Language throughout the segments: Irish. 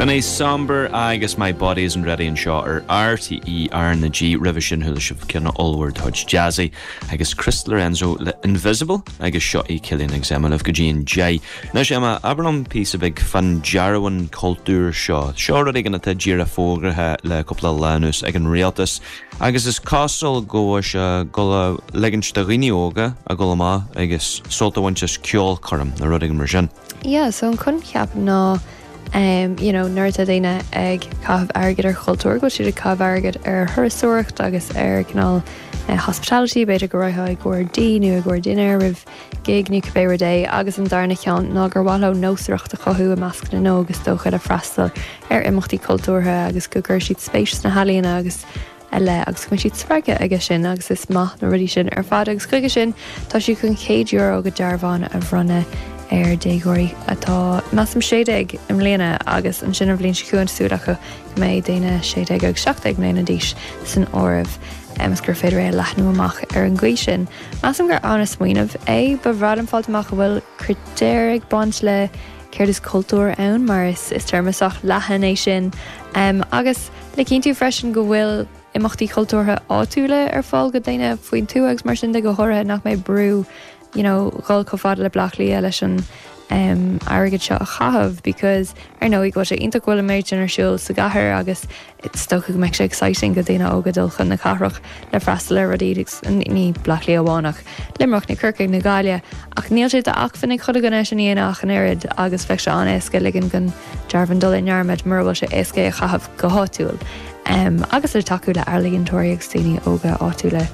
Sin é Sombr agus My Body Isn't Ready anseo ar RTÉ RnaG, roimhe sin chuala sibh ceann ollmhór de chuid Jazzy agus Chris Lorenzo le Invisible agus seo iad Cillian agus Emma libh go dtí an deich. Anois Emma, abair liom píosa beag faoin dearbhán cultúir seo. Seo rud éigin atá díreach fógraithe le cúpla lá anuas ag an Rialtas agus is cosúil go bhfuil sé ag ligint do dhaoine óga a dhul amach agus sult a bhaint as ceolchoirm nó rud éigin mar sin. Yeah, so an coincheap ná em you know nuair atá daoine ag caitheamh airgid ar chultúr, go bhfuil siad ag caitheamh airgid ar thurasóireacht agus ar cineál eh hospitality, b'fhéidir go raghfá i gcomhair dí nó i gcomhair dinnéir roimh gig nó cibé rud é agus an darna cheann ná gur mhaith leo nósmhaireacht a chothú i measc na n-óg is dócha le freastal ar imeachtaí cultúrtha agus go gcuirfidh siad spéis sna healaíona agus ar leith agus go mbeidh siad spreagtha aige sin agus is maith na rudaí sin ar fad agus chuige sin tá siad chun €100 de dhearbhán a bhronnadh ar déagóirí atá measaim 16 i mbliana agus ansin an bhliain seo chugainn tá súil acu go mbeidh daoine 16 agus 17 mbliana d'aois san áireamh agus gur féidir é a leathnú amach ar an gcaoi sin. Measaim gur an-smaoineamh é. Ba bhreá liom fáil amach an bhfuil critéir ag baint le céard is cultúr ann mar is téarma sách leathan é sin agus Le cinntiú freisin go bhfuil imeachtaí cultúrtha áitiúla ar fáil go daoine faoin tuath agus mar sin de, go háirithe nach mbeidh brú you know dhul chomh fada le Bleá Cliath leis an em airgead seo a chaitheamh because ar ndóigh go bhfuil sé iontach go bhfuil an méid sin ar siúl sa gcathair agus is dócha go mbeidh sé exciting go daoine óga dul chun na cathrach le freastal ar rudaí agus ní Bleá Cliath amháin ach Luimneach nó Corcaigh nó Gaille ach níl sé d'achmhainn ag chuile dhuine sin a dhéanamh ach an oiread agus bheadh sé an-éasca ligean gon Dearbhán dul i ndearmad mura bhfuil sé éasca é a chaitheamh go háitiúil agus le tacú le ealaíontóirí agus daoine óga áitiúla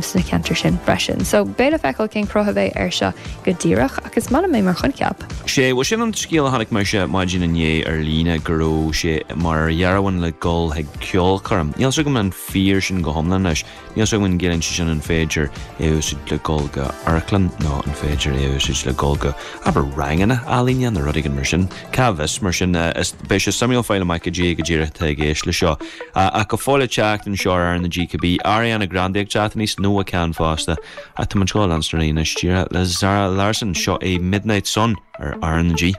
sna ceantair sin freisin. So beidh le feiceáil cén cruth a bheidh air seo go díreach ach is maith liom é mar choincheap. Sea, bhuel sin an scéal a chonaic mise ar maidin inné ar líne, go raibh sé mar dhearbhán le dhul chuig ceolchoirm. Níl 'fhios agam an fíor sin go hiomlán anois. Níl 'fhios agam an gciallaíonn sé sin an féidir é a úsáid le dul go amharclann nó an féidir é a úsáid le dul go, abair, ranganna ealaíne nó rud éigin mar sin. Cá bhfios? Mar sin, beidh sé suimiúil fáil amach go díreach, go díreach cad atá i gceist le seo. Ach go fóill le teacht anseo ar RnaG. Beidh Ariana Grande ag teacht aníos nua-cheann fosta. Ach tá muid chun leanstan ar aghaidh anois díreach le Zara Larsson. Seo é Midnight Sun ar RnaG.